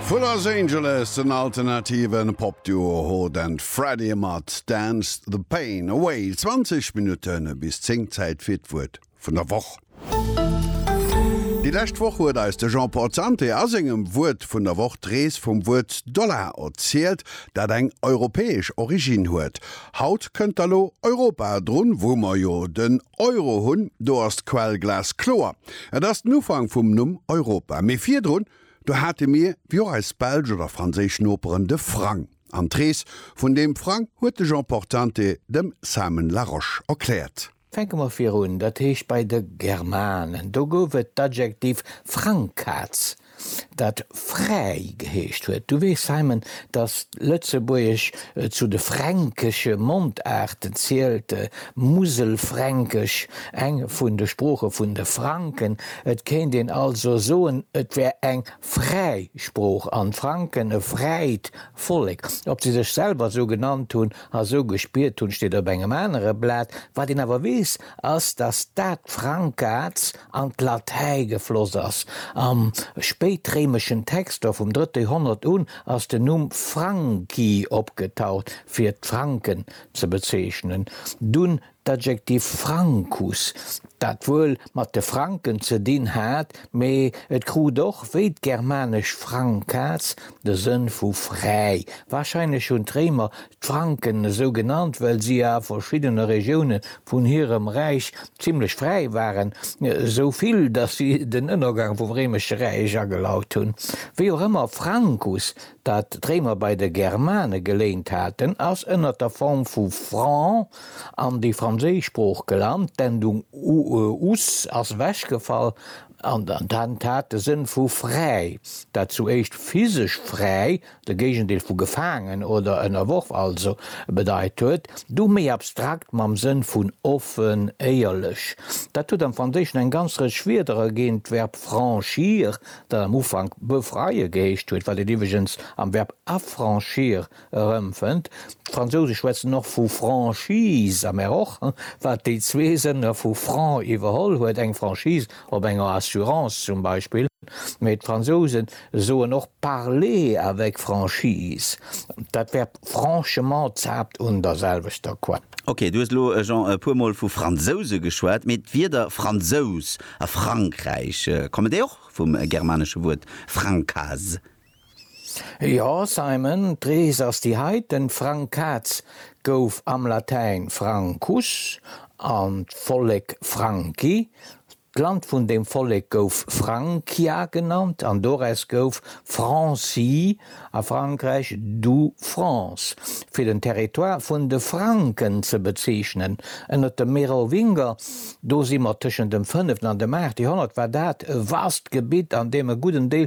Vu Los Angeles den alternative Popduo Hot and Freddy mat Dance the Pain Away. 20 Minutte bis 10, Zäit fir d'Wuert vun der Woch. Déi lescht Woch huet eis de Jean-Paul Zanter a sengem Wuert vun der Woch d'Rees vum Wuert Dollar erzielt, dat eng europäesch Originn huet. Haut kënnt da lo Europa drun, wou mer jo den Euro hunn, do ass d'Quell glaskloer. Et ass den Ufank vum Numm Europa. Mee virdrun, do hate mir, wéi och eis belsch oder franséisch Noperen, de Frang. An d'Rees vun deem Frang huet de Jean Portante dem Simon Larosche erkläert. Fänke mer virun, dat heescht bei de Germanen. Do gouf et d'Adjektiv Frangkatz. dat Fräi geheescht huet. Du weess, Simon, datt d'Lëtzebuergesch zu de fränkesche Mondaarten zielt, d'Muselfränkesch eng vun de Sprooche vun de Franken. Et kéint een also soen, et wär eng fräi Sprooch an d'Franken e fräit Vollek. Ob se sech selwer esou genannt hunn a esou gespiert hunn, steet op engem anere Blat. Wat een awer weess, ass, datt dat Frankaz an d'Latäi gefloss ass. Am spéitréimeschen Texter vum drëtte Joerhonnert un ass den Numm Franki opgetaucht, fir d'Franken ze bezeechnen. Dunn d'Adjektiv francus, dat wuel mat de Franken ze dinn hat, mee et krut och, wéi d'germanesch francas, de Sënn vu fräi. Warscheinlech hunn d'Réimer d'Franken esou genannt, well si a verschiddene Regioune vun hirem Räich zimlech fräi waren, esou vill, datt si den Ënnergang vum Réimesche Räich agelaut hunn. Wéi och ëmmer, Francus, dat d'Réimer bei de Germane geléint haten, ass ënner der Form vu franc an déi franséisch Sprooch gelant, d'Endung us ass ewechgefall an hat de Sënn vu fräi, dat zu éischt physesch fräi de Géigendeel vu gefaangen oder ënnerworf also, bedeit huet, du méi abstrakt mam Sënn vun offen, éierlech. Dat huet am Franséischen eng ganz Rëtsch Wierder erginn, d'Verb franchir, dat am Ufank befreie geheescht huet, wat een iwweregens am Verb affranchir erëmfënnt. D'Fransouse schwätzen och vu Franchise, a mer och, wat déi zwee Sënner vu franc iwwerholl huet, eng Franchise Op enger Assurance zum Beispill. Mee d'Fransouse soen och parler avec franchise. Dat Verb franchement zaapt un der selwechter Quell. Ok, du hues elo jon e puer mol vu Fransouse geschwat, mee d'Wierder Fransous a Frankräich, kommen déi och vum germanesche Wuert francas? Jo Simon, d'Rees ass déi heit, den Frank Kaz gouf am Latäin Francus an d'Vollek Franki, d'Land vun deem Vollek gouf Francia genannt an doraus gouf Franci a Frankräich du France fir den Territoire vun de Franken ze bezeechnen. Ënnert de Merowinger, do si mer tëschent dem fënneften an dem aachte Joerhonnert, war dat e vast Gebitt an deem e gudden Deel